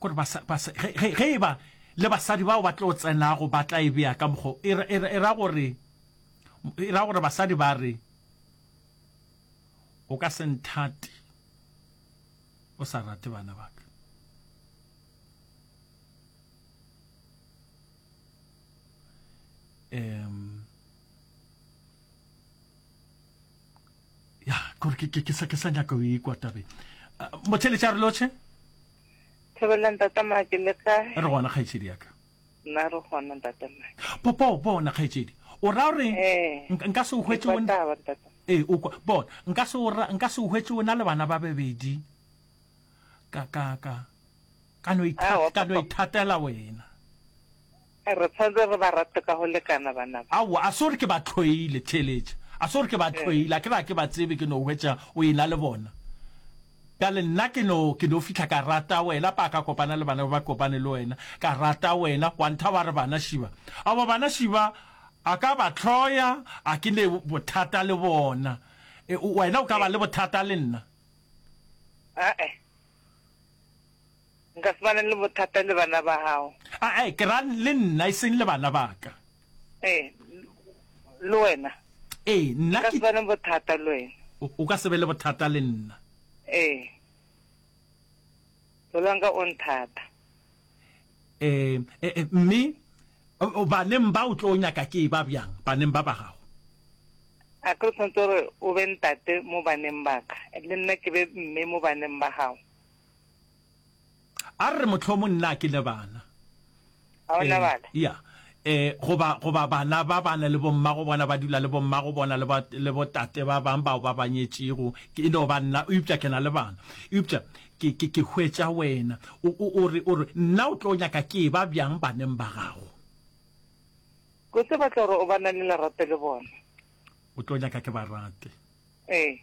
gore ba sa, ba sa, ge, ge, ge e ba le basadi bao ba tlo tsenago ba tla e bea ka mokgo e ra, e ra, e ra gore e ra gore basadi ba re o ka se nthate o sa rate bana ba ka um ya kore ke ke ke sa ke sa nyaka o ikwa tabe mothele tša re loche thebelang tata make le ka re gona kgaitsedi yaka nna re gona tata make popo bona kgaitsedi o ra gore eh. nka se o hwetse o ee o kwa bona nka se o nka se o hwetse o na le bana ba bebedi ka ka ka ka no ithatela wena Re tshwanetse re ba rate ka go lekana bana ba. Aowa, a se gore ke ba hloile, theeletša. A se gore ke ba hloile, a ke re ga ke ba tsebe, ke no hwetša o e-na le bona. Bjale nna ke no, ke no fihla ka rata wena, pa ka kopana le bana ba ba kopane le wena, ka rata wena, wa nthaba re bana šiba. Aowa, bana šiba, a ka ba hloya, a ke ne bothata le bona. E, wena o ka ba le bothata le nna? A-e. Nka se ba ne le bothata le bana ba gago. A-e, ke ra le nna, e seng le bana ba ka. Ee, le wena. Ee, nna ke. Nka se ba ne bothata le wena. O, o ka se be le bothata le nna. Ee. Pelo ya ka o nthata. Ee, e, e, mme baneng ba o tlo nyaka ke e ba bjang, baneng ba ba gago? A ke re tshwanetse gore o be ntate mo baneng ba ka, le nna ke be mme mo baneng ba gago? a re mohlomong nna ke le bana a ona bana ya eh goba goba bana ba bana le bomma go bona ba dula le bomma go bona le ba le botate ba bang bao ba banyetšego ke no ba nna o ipša ke na le bana ipša ke ke ke hwetša wena o o re o re nna o tlo nyaka ke ba bjang baneng ba gago go se batla gore o ba na le lerato le bona o tlo nyaka ke ba rate eh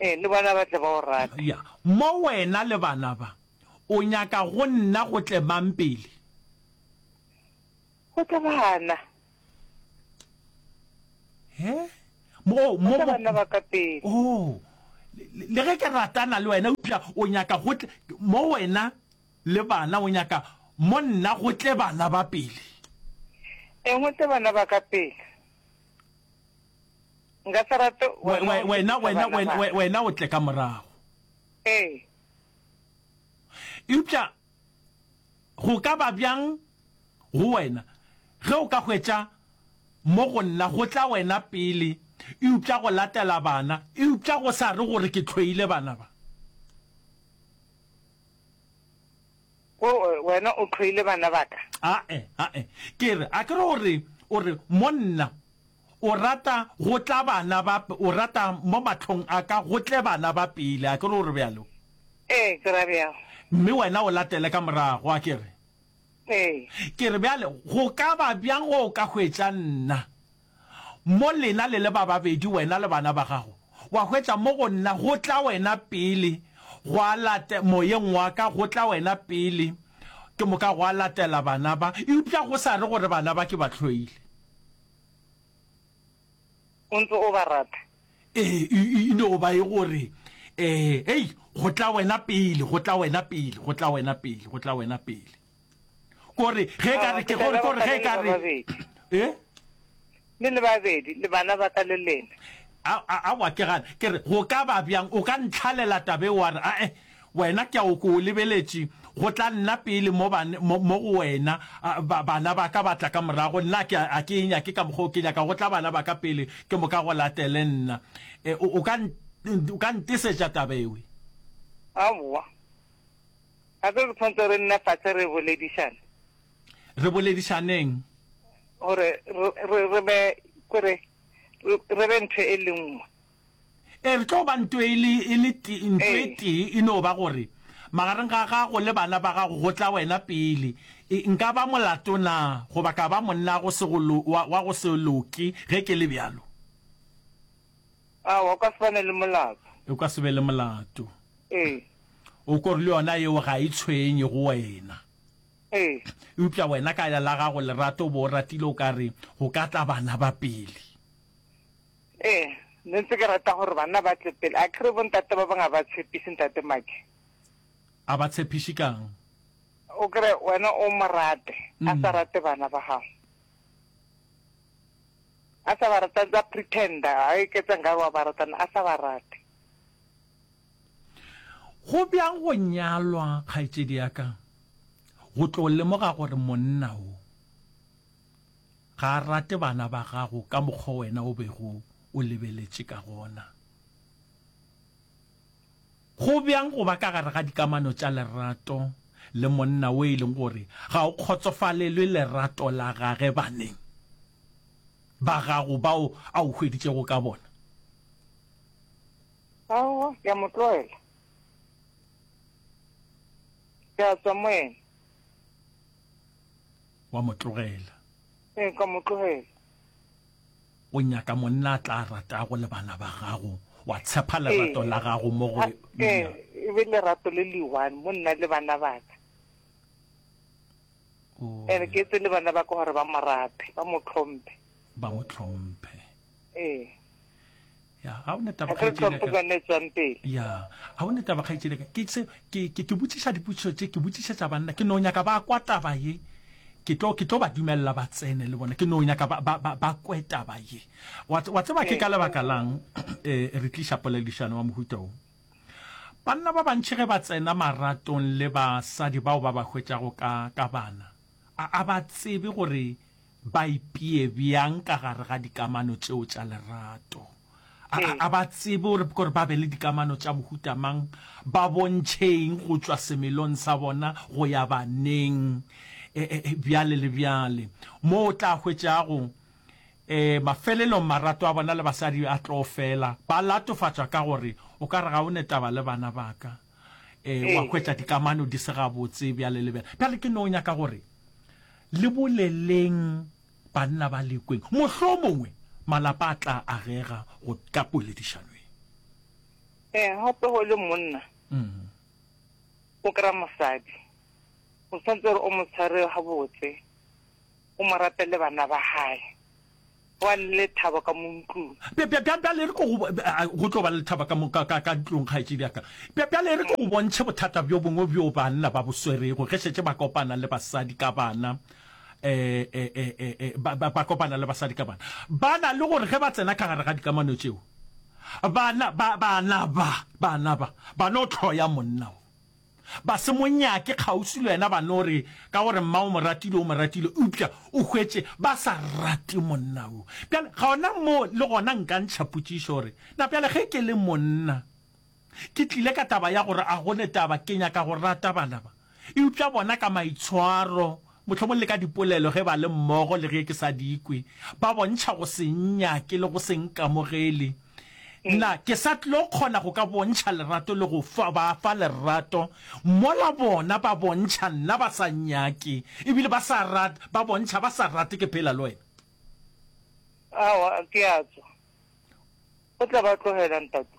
Ee, le bona ba tle ba o rate. Ya, mo wena le bana ba. O nyaka go nna go tle mang pele? Go tle bana. He? Mo, Go mo, tle mo. bana ba ka pele. Oh, le, le- le ge ke ratana le wena, eupša o nyaka go tle, mo wena le bana, o nyaka mo nna go tle bana ba pele. Eng go tle bana ba ka pele? Nka se rate wena wena o tle ka morago ee eupša go ka ba bjang go wena ge o ka hwetša mo go nna go tla wena pele eupša go latela bana eupša go sa re gore ke tlhoile bana ba wena o tlhoile bana ba ka ae ae ke re a ke re gore o re monna O rata go tla bana ba, o rata mo mahlong a ka go tle bana ba pele, a ke re o re bjalo? Ee, ke ra bjalo. Mme wena o latele ka morago, a ke re? Ee. Ke re bjale, go ka ba bjang ge o ka hwetša nna mo lena le le ba babedi, wena le bana ba gago, wa hwetša mo go nna go tla wena pele, gwa late, moyeng wa ka go tla wena pele, ke moka gwa latela bana ba, eupša go sa re gore bana ba ke ba hloile? O ntse o ba rata? Ee, e, e, e no ba e gore, ee, hei, go tla wena pele, go tla wena pele, go tla wena pele, go tla wena pele. Kore, ge e ka re, ke gore, kore, ge e ka re, ee? Le le babedi, le bana ba ka le lena. a wa ke gane ke re go ka ba bjang o ka ntlhalela tabe wa re ae Wena, ke a o ke o lebeletše, go tla nna pele mo, ban, mo, mo go wena, a, ba, bana ba ka ba tla ka morago, nna a ke, a ke e nyake ka mokgwa o ke nyaka, go tla bana ba ka pele, ke moka go latele nna. E, o, o ka, o ka ntesetša taba ewe? Aowa. Gape re tshwanetse re nne fase re boledišane. Re boledišaneng? Gore re, re, re be, ke re, re, re be ntho e le nngwe. Ee, re tlo ba nto e le, e le te, nto e tee, e no ba gore, magareng ga gago le bana ba gago go tla wena pele. E, nka ba molato na, goba ka ba monna go se go lo, wa, wa go se loke, ge ke le bjalo? Aowa, o ka se bane le molato. O ka se be le molato. Ee. O ko re le yona yeo ga e tshwenye go wena. Ee. Eupša wena ka la gago lerato bo o ratile o ka re, go ka tla bana ba pele. Ee, ne ntse ke rata gore banna ba tle pele. A kere bontate ba bangwe ga ba tshepiše ntate Maki. A ba tshepiše kang? O kere wena o mo rate, a sa rate bana ba gago. A sa ba rate, a ntse a pretender, a eketsa nkare wa ba rata, a sa ba rate. Go bjang go nyalwa, kgaetšedi ya ka, go tlo lemoga gore monna o. Ga a rate bana ba gago ka mokgwa o wena o bego o lebeletše ka gona. Go bjang go ba ka gare ga dikamano tša lerato le monna wo e leng gore ga o kgotsofalelwe lerato la gage baneng ba gago bao a o hweditšego ka bona? Aowa, ke a mo tlwaela. Ke a tswa mo ena. wa mo tlogela ee ka mo tlogela o nyaka monna a tla ratago le bana ba gago wa tshepa lerato la gago mo go ee e be lerato le le one mo nna le bana baka ene ke etse le bana ba ka gore ba mo rate ba mo tlhomphe ba mo tlhomphe ee ya ga o ne taba kgaitšele ka ke se ke ke ke botšiša dipotšišo tše ke botšiša tša banna ke no nyaka ba kwa taba ye ke tlo ke tlo ba dumelela ba tsene le bona ke no nyaka ba ba ba kwe taba ye wa tseba ke ka lebaka lang eh re tlisha polelishano wa mohuta o banna ba bantši ge ba tsena maratong le basadi bao ba ba hwetšago ka ka bana a ba tsebe gore Ba ipee bjang ka gare ga dikamano tšeo tša lerato? A, a, a ba tsebe gore, gore ba be le dikamano tša mohuta mang, ba bontšhe eng go tšwa semelong sa bona go ya baneng, e, e, e, bjale le bjale. Moo o tla hwetša go, e, mafelelong marato a bona le basadi a tlo fela. Ba latofatšwa ka gore, O ka re ga o ne taba le bana ba ka. e wa ee. hwetša dikamano di se gabotse bjale le bjale bjale ke no nyaka gore le boleleng banna ba lekweng mohlo mongwe malapa a tla agega go ka poledišano e ee gape go le monna mm. o kry-a mosadi o tshwanetse gore o mo tshware gabotse O mo rapele bana ba gae. Go a le lethabo ka mo ntlong. Bjale e re ke go. Go tlo ba le lethabo ka mo, ka, ka, ka ntlong, kgaetšedi ya ka. Bjale e re ke go bontšhe bothata bjo bongwe bjo banna ba bo swerego ge šetše ba kopana le basadi ka bana. E, e, e, e, e, ba, ba, ba kopana le basadi ka bana. Ba na le gore ge ba tsena ka gare ga dikamano tšeo, bana, ba, bana ba, bana ba, ba no hloya monna wo. Ba se mo nyake kgauswi le wena, ba no re ka gore mma o mo ratile, o mo ratile, eupša o hwetše ba sa rate monna wo. Bjale gona mo le gona nka ntšha potšišo gore, na bjale ge ke le monna ke tlile ka taba ya gore a go le taba ke nyaka go rata bana ba, eupša bona ka maitshwaro Mohlomong le ka dipolelo ge ba le mmogo le ge ke sa di kwe, ba bontšha go se nnyake le go se nkamogele. Na ke sa tlo kgona go ka bontšha lerato le go ba fa lerato mola bona ba bontšha nna ba sa nnyake e bile ba sa rate, ba bontšha ba sa rate ke phela le wena? Aowa, ke a tswa. O tla ba tlogela, ntate.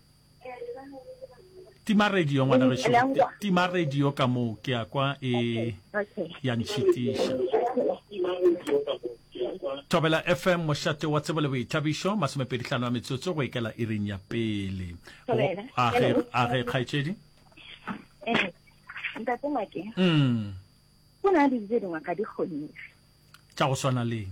tima radio ngwana ge šo tima radio ka mo ke ya kwa e ya ntšhitiša thobela fm mošate wa tsebo le boithabišo masomepedi tlhano ya metsotso go ikela e reng ya pele a ge kgaetšedi eh, ntate make mm. go na le dijo dingwe ga di kgonege tša go swana leng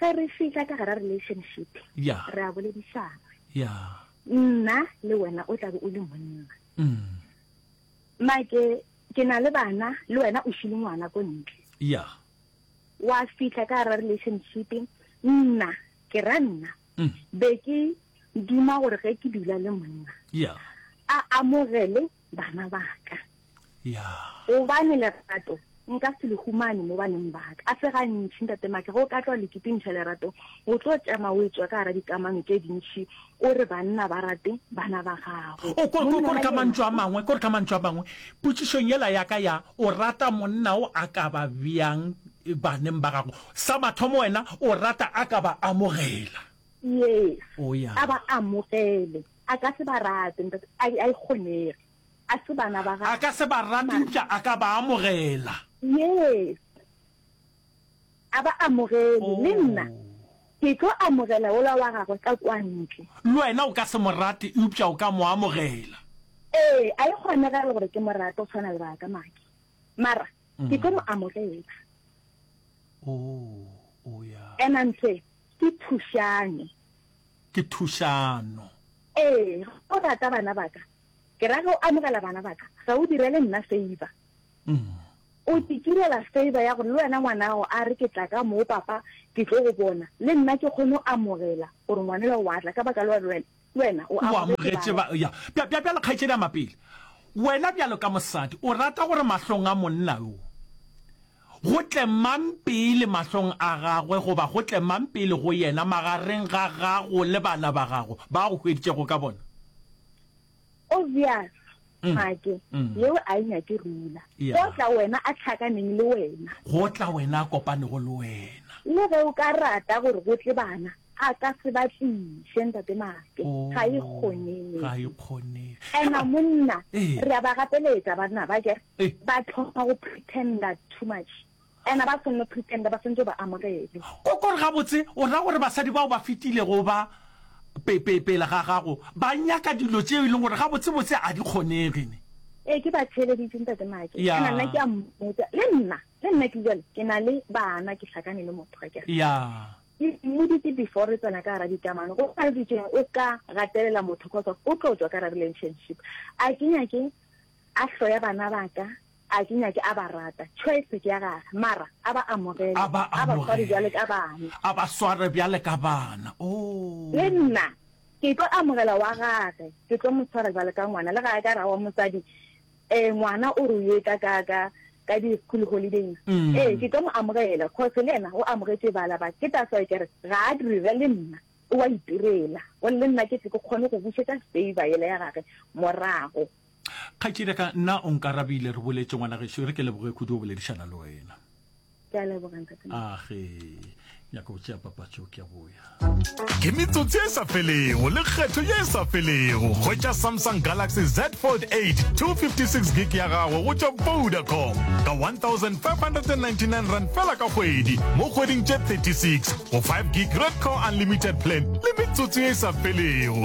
ge re fihla ka gara relationship ya re a boledišana ya nna le wena o tlabe o le monna mm. make ke na le bana le wena o šile ngwana ko ntle ya wa fihla ka gara relationship nna ke ra nna mm. be ke duma gore ge ke dula le monna ya a amogele bana ba ka ya gobane lerato nka se le humane mo baneng ba ka a se gantšhi ntate make go ka tlwa leketengša lerato o tlo tšama o etswa ka gara dikamano tše dintšhi o re banna ba rate bana ba gago o ko- ko- Monna kore ka yena- mantšu a mangwe kore ka mantšu a mangwe potšišong yela ya ka ya o rata monna o a ka ba bjang eh, baneng ba gago sa mathomo wena o rata a ka ba amogela yes o ya a ba amogele A ka se ba rate, ntate. A, a e kgonege. A se bana ba gagwe. A ka se ba rate, eupša a ka ba amogela. Yes. A ba amogele. Le nna Oh. ke tlo amogela wola wa gagwe ka kwa ntle. Le wena o ka se mo rate, eupša o ka mo amogela. Ee, a e kgonegele gore ke mo rate go tshwana le ba ka, Maki. Mara ke tlo mo amogela. Oh, oh, ya. And I'm saying, Ke thušano. Ke thušano. Ee, ge o rata bana ba ka, ke ra ge o amogela bana ba ka, ga o direle nna feiba. O ke kirela feiba ya gore le wena ngwanago a re ke tla ka moo, Papa, ke tlo go bona, le nna ke kgone go amogela gore ngwanela o a tla ka baka la gore le wena Wena o amogetše ba. Ya, bja, bja, bjalo, kgaetšedi a mapele, wena bjalo ka mosadi o rata gore mahlong a monna yo go tle mang pele mahlong a gagwe, goba go tle mang pele go yena magareng ga gago le bana ba gago ba go hweditšego ka bona. obvious mm. make mm. yeo a e nyake rula yeah. go tla wena a tlhakaneng le wena go tla wena a kopanego le wena le ge o ka rata gore go tle bana a ka se ba tliše ntate make oh, ga e kgonege ena monna eh. re a ba gapeletsa banna ba kere eh. ba tlhoka go pretender too much Ana ba se nno Kristende ba swantšwe ba amogele? Kokor gabotse o ra gore basadi bao ba fetilego ba pe, pe, pele ga gago ba nyaka dilo tšeo e leng gore gabotsebotse ga di kgonege? Ne. Ee, ke ba theeleditše, Ntate Maake. Ya. Ana nna ke a mmotša, le nna, le nna ke bjale ke na le bana, ke hlakane le motho, ga ke re. Ya. Ke mmoditše before re tsena ka gara dikamano, go sa ditšeng o ka gatelela motho cos of o tlo tšwa ka gara relationship. A ke nyake a hloya bana ba ka, A ke nyake, a ba rata. Choice ke ya gage, mara a ba amogele. A ba amogele. A ba sware bjale ka bana. A ba sware bjale ka bana. Oh. Le nna, ke tlo amogela wa gage. Ke tlo mo swara bjale ka ngwana. Le ga a ka ra wa mosadi, eh, ngwana o re o ye ka, ka, ka, ka di school holidays. Mm. Eh, ke tlo mo amogela, cause le yena o amogetše bala ba. Ke that's why ke re, ga a dire le nna. O a itirela. Gore le nna ke tle ke kgone go bušetša favour yela ya gage morago. Kgaetšedi ya ka, nna o nkarabile, re boletše ngwana gešo, e re ke leboge kudu go boledišana le wena. Ke a leboga ntate. Age, nyaka go tšea papatšo ke a boya. Ke metsotsi e sa felego le kgetho ye e sa felego. Hwetša Samsung Galaxy Z Fold 8 256 gig ya gago go tšwa Vodacom ka 1599 rand fela ka kgwedi mo kgweding tše 36 go 5 gig Red Core Unlimited Plan le metsotsi ye e sa felego.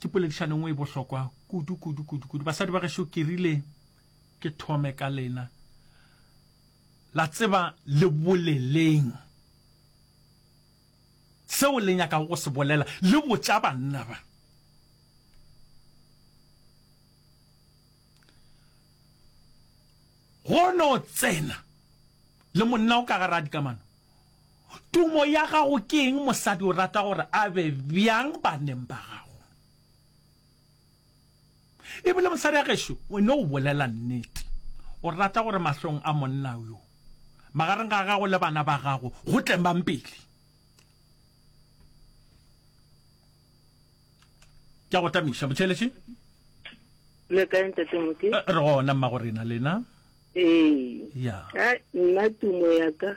ke poledišano nngwe e bohlokwa kudu kudu kudu kudu basadi ba gešo ke rile ke thome ka lena la tseba le boleleng seo le nyakago go se bolela le botša banna ba go no tsena le monna o ka gara dikamano Tumo ya gago ke eng? Mosadi o rata gore a be bjang baneng ba gago? E bile mosadi a gešo, o no o bolela nnete. O rata gore mahlong a monna yo, magareng ga gago le bana ba gago, go tle mang pele? Ke a go tamiša, Motšheletše. Le kae, Ntate Moke? Eh, re gona, Mmagorena, lena? Ee. Ya. Nna tumo ya ka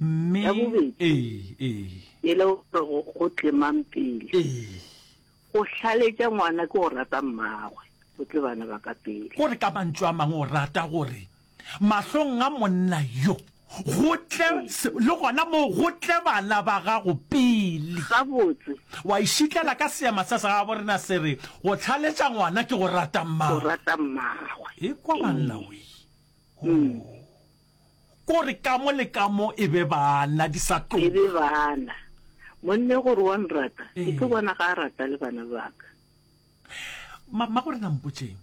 mme ya bobedi ee ee e le gore go go tlemang pele ee go hlaletša ngwana ke go rata mmagwe go tle bana ba ka pele o re ka mantšu a mangwe o rata gore mahlong a monna yo go tle Ee. se- le gona moo go tle bana ba gago pele gabotse wa išitlela ka seema sa sa gabo rena se re go tlhaletša ngwana ke go rata go mmago rata mmagwe e kwa banna we Mm. Ko re kamo le kamo e be bana, di sa tloga. E be bana. Monne gore wa nrata, ke tlo bona ga a rata le bana ba ka. Ma, ma gore na mpotšeng.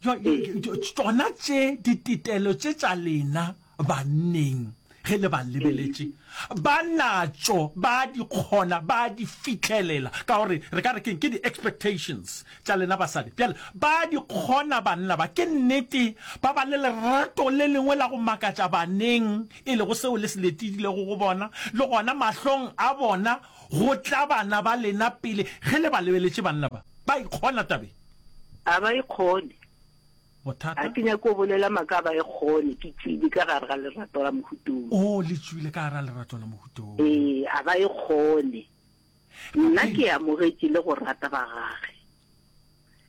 Tsona tše dititelo tše tša lena banneng. Ge le ba lebeletše, ba natšo, ba a di kgona, ba a di fihlelela. Ka gore, re ka re keng? Ke di-expectations tša lena basadi. Bjale, ba a di kgona banna ba. Ke nnete, ba ba le lerato le lengwe la go makatša baneng, e lego seo le se letidilego go bona, le gona mahlong a bona, go tla bana ba lena pele. Ge le ba lebeletše, banna ba, ba ikgona tabeng. A ba ikgone. Bothata? A ke nyake go bolela maaka a ba e kgone, ke tšwile ka gare ga lerato la mohutong. Oo, le tšwile ka gare ga lerato la mohutong. Ee, a ba e kgone. Nna ke amogetše le go rata ba gage.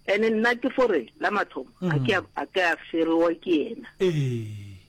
Ene nna ke fore, la mathomo, a ke a, a ke a ferewa ke yena. Ee.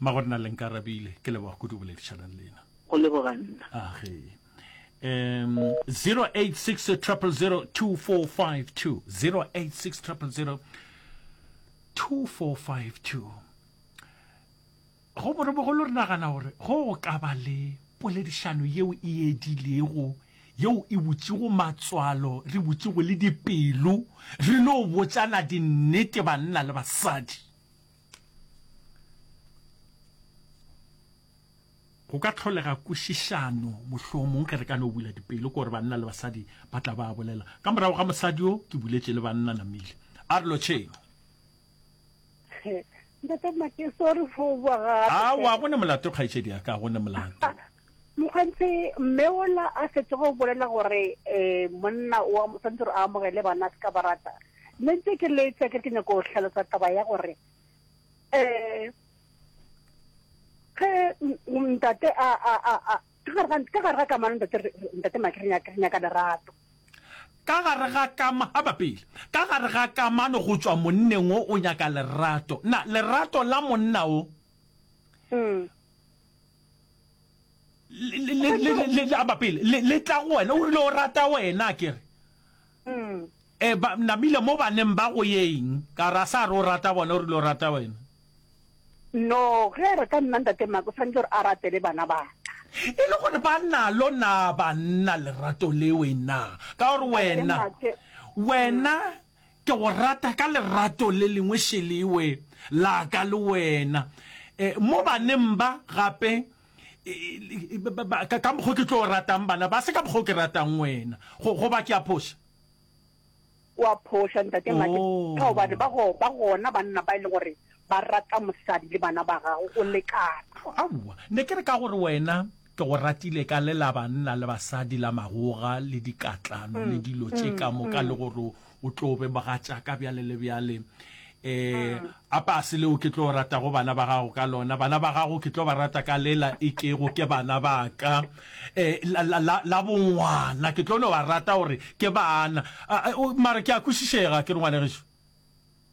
Mmago nna le nkarabile ke leboga kudu boledišanang le ena. Go leboga nna. Ah ge. Um 086 000 2452 086 000 2452 go borobogolo re nagana gore go go ka ba le poledišano yeo e edilego yeo e botšego matswalo re botšego le dipelo re no botsana dinnete banna le basadi go ka tlholega kwešišano mohlomong ge re ka no bula dipelo kore banna le basadi ba tla ba bolela ka morago ga mosadi yo ke buletše le banna namile a re lotšheng awa go ne molato kgaetšedi ya ka go ne molato Mokganthe, mme ola a fetsa go bolela gore um monna o a- tshwanetse gore a amogele bana a se ka ba rata. Mme ntse ke letsa ke re ke nyako go hlalosa taba ya gore um ge m- m- ntate a a a a ka gare ga- ka gare ga kamano ntate re- re- ntate Maki re nyaka re nyaka lerato. ka gare ga kama ga bapele ka gare ga kamano go tšwa monneng o o nyaka lerato na lerato la monna o Mm. le tla ba pele le tla go wena o rile o rata wena ke re mm. e ba namile mo baneng ba go yeng ka ra sa re o rata bona o rile o rata wena no ge re ka nna ntate mako tshwanetse gore a ratele bana ba e le gore ba nalo na banna lerato le wena ka gore wena wena Ke go rata ka lerato le lengwe Shelewe la ka le wena mo baneng ba gape ka mokgwa o ke tlo ratang bana ba se ka mokgwa o ke ratang wena goba ke a phoša? O a phoša ntate Madi ka gobane ba go ba gona banna ba e leng gore ba rata mosadi le bana ba gago go lekana. Aowa ne ke re ka gore wena Ke go ratile ka le la banna le basadi la magoga le dikatlano le dilo tše ka moka le gore o tlo be mogatšaka bjale le bjale. Um a pase leo ke tlo ratago bana ba gago ka lona, bana ba gago ke tlo ba rata ka lela e kego ke bana ba ka. Um la, la, la, la bongwana ke tlo no ba rata gore ke bana. A, a, o, mare ke a kwešišega akere ngwanegešu?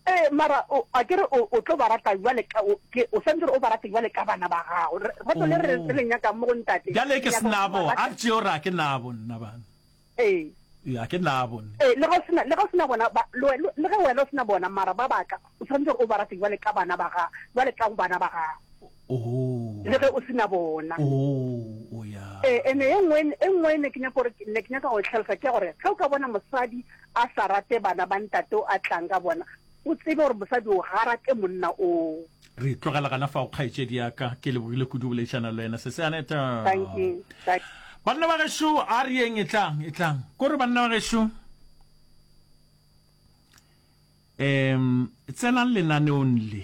Ee, mara o, a ke re o, o tlo ba rata bjale ka, o, ke, o swantse gore o ba rate bjale ka bana ba gago. Re- Rato le re, re le nyakang mo go Ntate, Bjale re ke nyaka gore o ba senabo, a rate. re tšeo re a ke nabo nna bana. Ee. Ee, a ke nabo nna. Ee, le ge o sena, le ge o sena bona, ba, le, we- le ge wena o sena bona, mara ba baka, o swantse gore o ba rate bjale ka bana ba ga, bjale ka bana ba gago. le ge o se na bona. Ee, ene e nngwe e nngwe e ne ke nyaka gore ke ne ke nyaka go e tlhalosa ke ya gore ge o ka bona mosadi a sa rate bana ba ntate o a tlang ka bona, o tsebe gore mosadi o ga rate monna oo. Re tlogela gana fao kgaetšedi ya ka, ke lebogile kudu boledišana le wena se se Aneta. Thank you. Thank you. Banna ba gešo a re yeng e tlang e tlang kore banna ba gešo um tsenang lenaneong le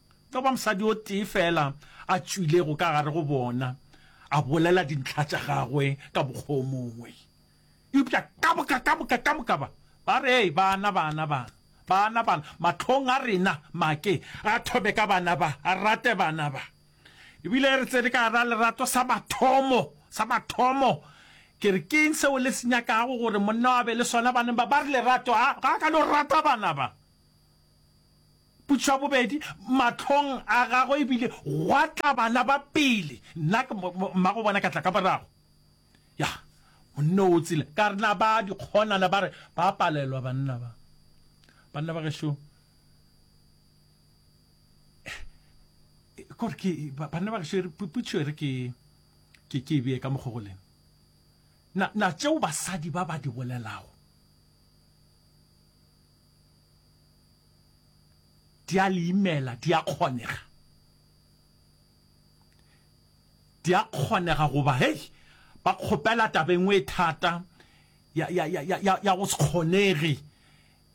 Tla ba mosadi o tee feela a tšwilego ka gare go bona, a bolela dintlha tša gagwe ka mokgwa o mongwe. Eupša ka moka, ka moka, ka moka ba, ba re, Hei, bana, bana, bana, bana, bana, mahlong a rena, make a thome ka bana ba, a rate bana ba. Ebile re tsene ka gara lerato sa mathomo, sa mathomo. Ke re, Ke'ng seo le se nyakago gore monna wa be le sona baneng ba? Ba re, Lerato. A, ga a ka no rata bana ba. Potšišo ya bobedi, Mahlong a gagwe e bile gwa tla bana ba pele, nna ke mmago bona ka tla ka morago. Ya, monna o tsile. Ka re, Na ba dikgonana ba re ba palelwa banna ba? Banna ba gešo, kore ke, banna ba gešo, potšišo e re ke, ke, ke e bee ka mokgo go lena. Na, na tšeo basadi ba ba di bolelago, Di a le imela, di a kgonega. Di a kgonega goba, hei, ba kgopela taba e nngwe e thata ya, ya, ya, ya, ya go se kgonege.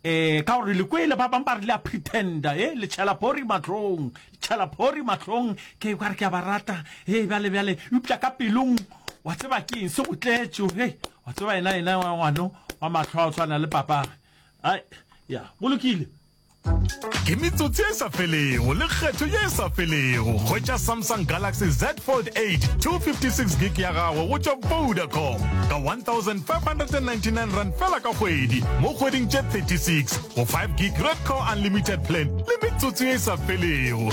Eh, ka gore le kwele ba bang ba re le a pretenda, eh, le tšhela phori matlong, le tšhela phori matlong, ke ka re ke a ba rata, eh, bjale, bjale, eupša ka pelong, wa tseba ke eng se go tletšo, eh, wa tseba ena, ena wa ngwano wa matlho a o tshwana le papage, Ai, ya, go lokile. Ke metsotsi e sa felego le kgetho ye e sa felego hwetša Samsung Galaxy Z Fold 8 256 gig ya gago go tšwa Vodacom ka 1599 rand fela ka kgwedi mo kgweding tše 36 go 5 gig Red Core Unlimited Plan le metsotsi ye e sa felego.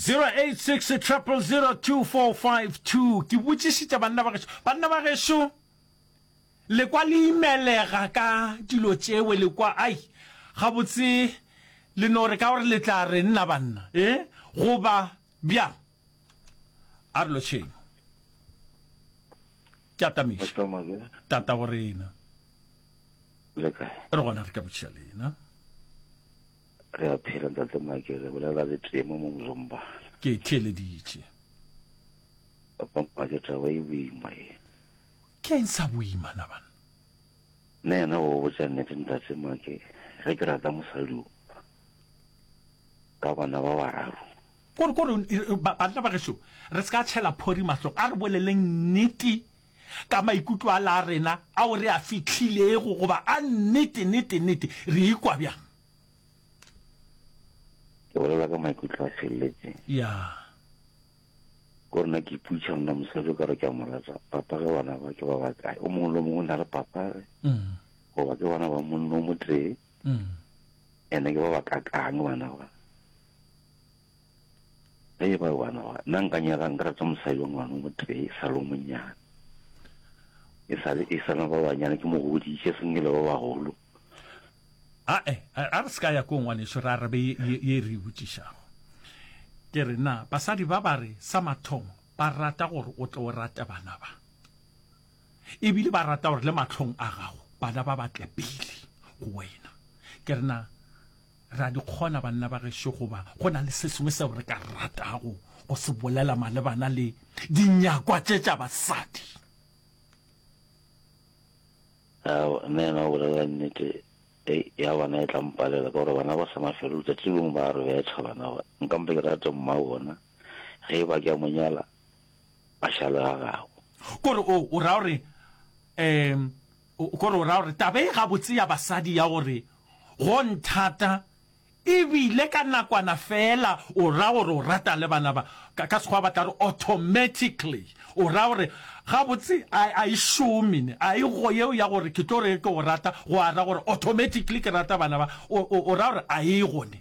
0860002452 ke botšišitša banna ba gešo banna ba gešo lekwa le imelega ka dilo tšewe lekwa ai gabotse le no re ka gore le tla re nna banna e goba bja a re lotšheng ke atamiša tata go rena re gona re ka botšiša lena Re a phela ntate Make, re bolela le tee mo mong Zombana. Ke e theeleditše. Papa Make, taba e boima ye. Ke eng sa boima na banna? Nna yena o botša nnete ntate Make, ge ke rata mosadi o ka bana ba bararo. Kore, kore, banna ba gešo, re se ka tšhela phori mahlong, a re boleleng nnete. ka maikutlo a la rena ao re a fihlilego goba a nnete, nete, nete, re ikwa bjang? Ke bolela ka maikutlo a feleletseng. Ya. Ko rena ke iputša mna mosadi o ka re ke a mo rata, papa ge bana ba ke ba ba kae? O mongwe le mongwe o na le papa ge? Mm. Goba ke bana ba monno mo tee? Mm. Ene ke ba ba kakang bana ba? Ge e ba bana ba, nna nka nyaka nka rata mosadi wa ngwana mo tee, e sa lo monyana. E sa le, e sa na ba banyana, ke mo goditše, seng e le ba bagolo. A, eh, a re se ka ya ko ngwaneso, re arabe ye, ye, ye re e botšišago. Ke re na, basadi ba ba re sa mathomo, ba rata gore o tle o rate bana ba. Ebile ba rata gore le mahlong a gago, bana ba ba tle pele go wena. Ke re na, Re a di kgona, banna ba gešo, goba go na le se sengwe seo re ka ratago go se bolela malebana le dinyakwa tše tša basadi? Ao, nna yena o bolela nnete. Ei, ya bona e tla mpalela, ka gore bana ba sa na felo, letšatši le lengwe ba a re betha bana ba. Nka mpa ke rate mma wa bona, ge e ba ke a mo nyala, a šale ga gago. Ko re, oo, o ra gore, um. O ko re o ra gore taba e gabotse ya basadi ya gore go nthata e bile ka nakwana feela o ra gore o rata le bana ba, ka, ka Sekgowa ba tla re automatically. O ra gore gabotse a, a e šome ne, a e go yeo ya gore ke tlo re ke go rata go a ra gore automatically ke rata bana ba. O, o, o ra gore a e go ne.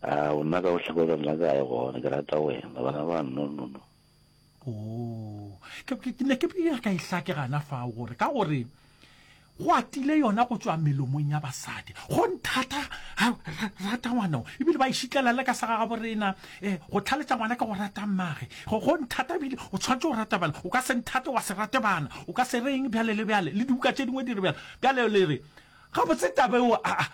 A o nna ka go hlakoreng la kae gona, ke rata wena, bana ba, no, no, no. Oh, ke ne ke ya ka ihlake gana fa gore ka gore go atile yona go tswa melomong ya basadi go nthata rata ngwana o ebile ba išitlela le ka sa ga borena eh go tlhaletsa ngwana ka go rata mmage go go nthata ebile o tshwanetse go rata bana o ka se nthate wa se rate bana o ka se reng bjale le bjale le dibuka tše dingwe di re bjale bjale le re ga botse tabe o a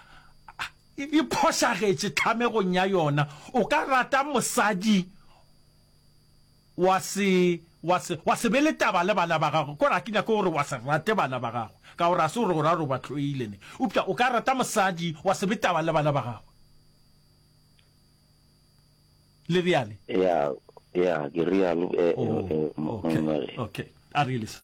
e phošagetše tlhamegong ya yona o ka rata mosadi wa se, wa se, wa se be le taba le bana ba gago, gore ga ke nyake gore wa se rate bana ba gago, ka gore ga se gore o ra gore o ba hloile ne, eupša o ka rata mosadi, wa se be taba le bana ba gagwe. Le reale? Ya, ya, ke realo, e, e, Oh, e, okay, monna. okay. A reale, sir.